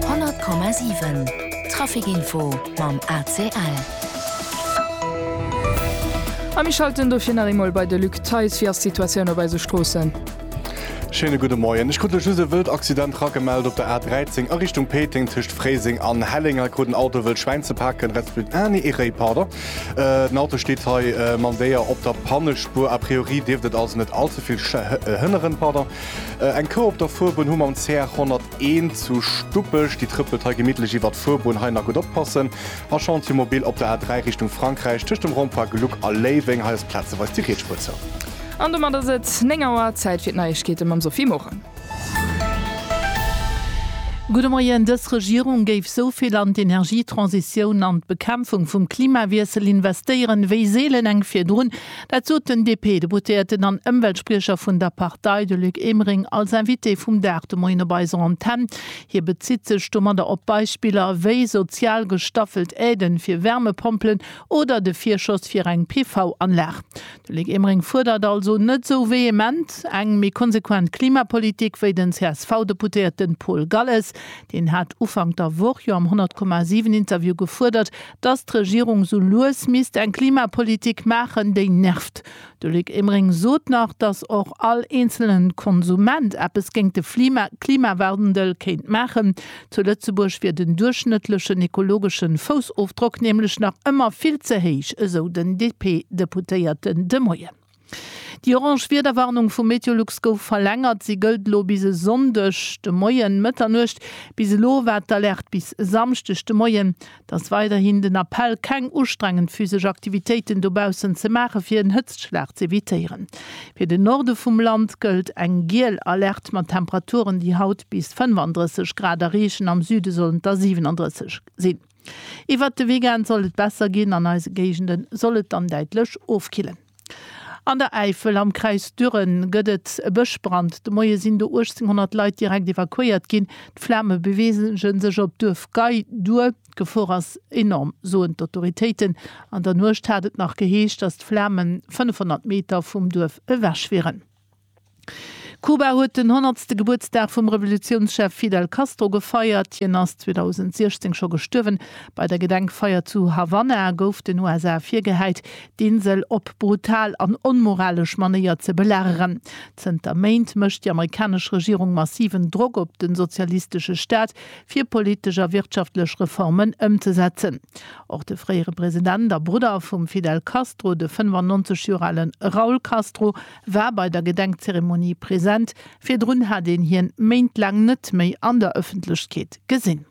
100,7 Traficinfo mam ACL. A mir schalten dofir nach eemol bei de Luc Theis. Wéi ass d'Situatioun op eise Stroossen? Schéine gudde Moien. Ech krut lech just e wëllt Accident ragemellt op der A 13 a Richtung Péiteng. Tëscht Fréiseng an Helleng hei krut en Auto e wëllt Schwäin ze paken, resp. Ah nee, ee Réi, pardon. Den Auto steet hei mam Déier op der Pannespuer. A priori dierft et also net all ze vill hënneren, pardon. Eng Cour op der Fuerbunn hu mer um CR 101 zu Stuppech. Déi trëppelt hei gemittlech iwwert d'Fuerbunn. Hei nach gutt oppassen. A Chantier mobil op der A3 Richtung Frankräich tëscht dem Rond-point Gluck a Léiweng. Hei ass plazeweis déi Rietspur zou. An domat ass et 9 Auer. Zäit fir d'Neiegkeete mam Sophie Morang. Gudde Moien. Dës Regierung géif sou vill an d'Energietransitioun an d'Bekämpfung vum Klimawiessel investéieren, wéi seelen eng virdrun. Dat sot den DP-Deputéierten an Ëmweltspriecher vun der Partei, de Luc Emering, als Invité vum Dag de Moien op eiser Antenn. Hie bezitt sech domadder op Beispiller wéi sozial gestaffelt Aiden fir Wärmepompelen oder de Virschoss fir eng PV-Anlag. De Luc Emering fuerdert also net esou vehement eng méi konsequent Klimapolitik wéi den CSV-Deputéierte Paul Galles. Deen hat Ufank der Woch jo am 100,7 Interview gefuerdert, dass d'Regierung sou lues misst eng Klimapolitik maachen, déi nervt. De Luc Emering sot nach, dass och all eenzelnen Konsument eppes géint de Klimawandel kéint maachen. Zu Lëtzebuerg wier den duerchschnëttlechen ekologeschen Foussofdrock nämlech nach ëmmer vill ze héich, esou den DP-Deputéierten de Moien. Déi orange Wiederwarnung vu Meteolux gouf verlängert. Si gëllt elo bis e Sonndeg de Moien, Mëtternuecht. Bis elo war d'Alerte bis e Samschdeg de Moien. Et ass weiderhin den Appell, keng ustrengend physesch Aktivitéiten dobaussen ze maachen, fir en Hëtztschlag z'evitéieren. Fir den Norde vum Land gëllt eng giel Alerte mat Temperaturen, déi haut bis 35 Grad erreechen. Am Süde sollen et der 37 sinn. Iwwert de Weekend sollt et besser ginn, an eise Géigende soll et dann däitlech ofkillen. An der Äifel, am Kräis Düren, gëtt et e Bëschbrand. De Moie sinn do 1.800 Leit direkt evakuéiert ginn. D'Flame beweege sech op d'Duerf Gei duer. D'Gefor ass enorm, soen d'Autoritéiten. An der Nuecht hat et nach geheescht, datt d'Flamen 500 Meter vum Duerf ewech wieren. Kuba huet den honnertste Gebuertsdag vum Revolutiounschef Fidel Castro gefeiert. Hien ass 2016 scho gestuerwen. Bei der Gedenkfeier zu Havanna gouf den USA virgehäit, d'Insel op brutal an onmoralesch Manéier ze belageren. Zënter Méint mécht déi amerikanesch Regierung massiven Drock op de sozialistesche Staat, fir politesch a wirtschaftlech Reformen ëmzesetzen. Och de fréiere President a Brudder vum Fidel Castro, de 95 Joer ale Raul Castro, war bei der Gedenkzeremonie present, virdrun hat een hien méintlaang net méi an der Ëffentlechkeet gesinn.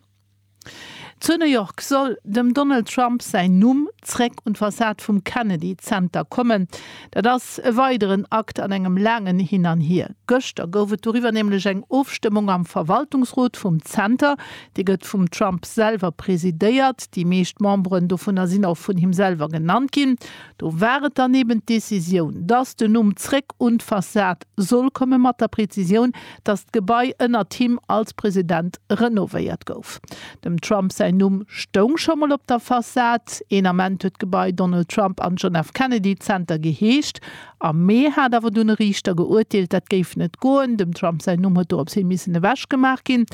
Zu New York soll dem Donald Trump säin Numm zréck un d'Fassad vum Kennedy Zenter kommen. Dat ass e weideren Akt an engem laangen Hin an Hier. Gëschter gouf et doriwwer nämlech eng Ofstëmmung am Verwaltungsrot vum Zenter. Dee gëtt vum Trump selwer presidéiert, déi meescht Memberen dovunner sinn och vun him selwer genannt ginn. Do war et dann eben d'Décisioun, dass den Numm zréck un d'Fassad soll kommen, mat der Präzisioun, dass d'Gebai ënnert him als President renovéiert gouf. Dem Trump säin Numm stoung scho mol op der Fassad. Een Ament huet d'Gebai Donald Trump and John F. Kennedy Center geheescht. Am Mee hat awer dunn e Riichter geurteelt, dat géif net goen, dem Trump säin Numm huet dorops hin missen ewechgemaach ginn.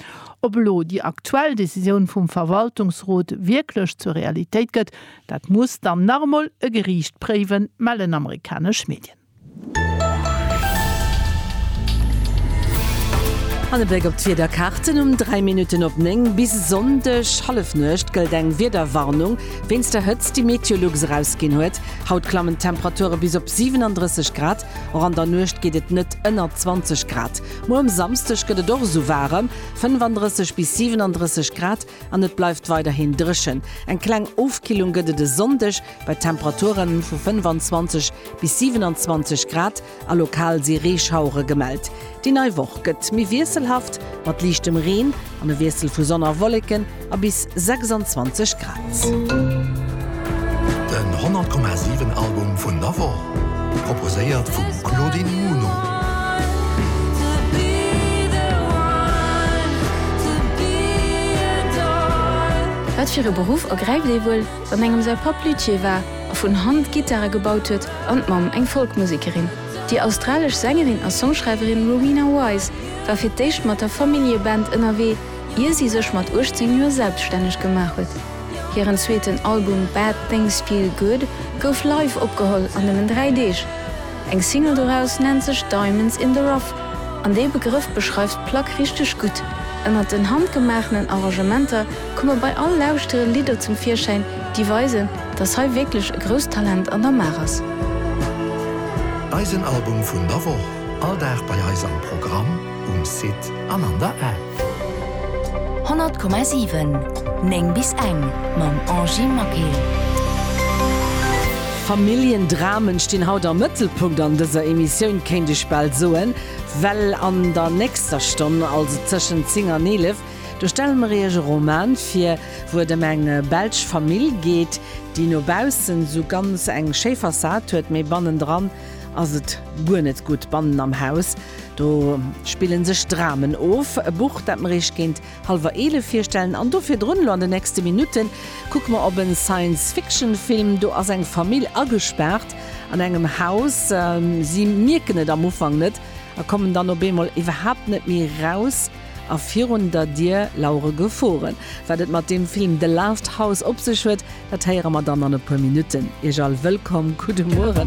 Ob elo déi aktuell Décisioun vum Verwaltungsrot wierklech zur Realitéit gëtt, Dat muss dann nach emol e Geriicht préiwen, mellen amerikanesch Medien. An e Bléck op d'Wiederkaarten um 3 Minutten op 9. Bis e Sonndeg Hallefnuecht gëllt eng Wiederwarnung wéinst der Hëtzt, déi Meteolux erausginn huet. Haut klammen d'Temperature bis op 37 Grad, och an der Nuecht geet et net ënner 20 Grad. Muer um Samsdeg gëtt et och esou waarem, 35 bis 37 Grad. An et bleift weiderhin dréchen. Eng kleng Ofkillung gëtt et e Sonndeg bei Temperaturen vu 25 bis 27 Grad a lokal si Reeschauere gemellt. Déi nei Woch gëtt méi wiesselhaft mat liichtem Reen an e Wiessel vu Sonn a Wolleken a bis 26 Grad. Den 100,7 Album vun der Woch, proposéiert vum Claudine Muno. Wat fir e Beruff ergräift ee wuel, wann engem säi Papp Luthier war a vun Hand Gittare gebaut huet an d'Mamm eng Folkmusekerin? Déi australesch Sängerin a Songschreiwerin Rowena Wise war fir d'éischt mat der Familljeband ënnerwee, ier si sech mat 18 Joer selbstänneg gemaach huet. Hiren zweeten Album Bad Things Feel Good gouf live opgeholl an nëmmen dräi Deeg. Eng Single doraus nennt sech Diamonds in the Rough an dee Begrëff beschreift d'Plack richteg gutt. Ënnert den handgemaachenen Arrangementer komme bei all Lauschtere Lidder zum Virschäin, déi weisen, dass hei wierklech e grousst Talent an der Maach ass. Eisen Album vun der Woch, all Dag bei eis am Programm, um Site an an der App. 100,7 9 bis eng mam Angie Maquet. Familljendramen stinn haut am Mëttelpunkt an dëser Emissioun, kéint ech bal soen, well an der nächster Stonn, also tëschent 10 an 11, do stelle mer iech e Roman vir, wou et ëm eng belsch Famill geet, déi no baussen esou ganz eng schéi Fassad huet, mee bannendran ass et guer net gutt, bannen am Haus. Do spillen sech Dramen of, e Buch dat mer Iech géint halwer 11 virstellen an do virdrun. Elo an den nächste Minutten kucke mer op e Science Fiction Film. Do ass eng Famill agespaart an engem Haus. Si mierken et am Ufank net a kommen dann op eemol iwwerhaapt net méi raus a virun der Dier lauere Geforen. Wat et mat deem Film The Last House op sech huet, dat héiere mer dann an e puer Minutten. Iech all wëllkomm, gudde Mueren.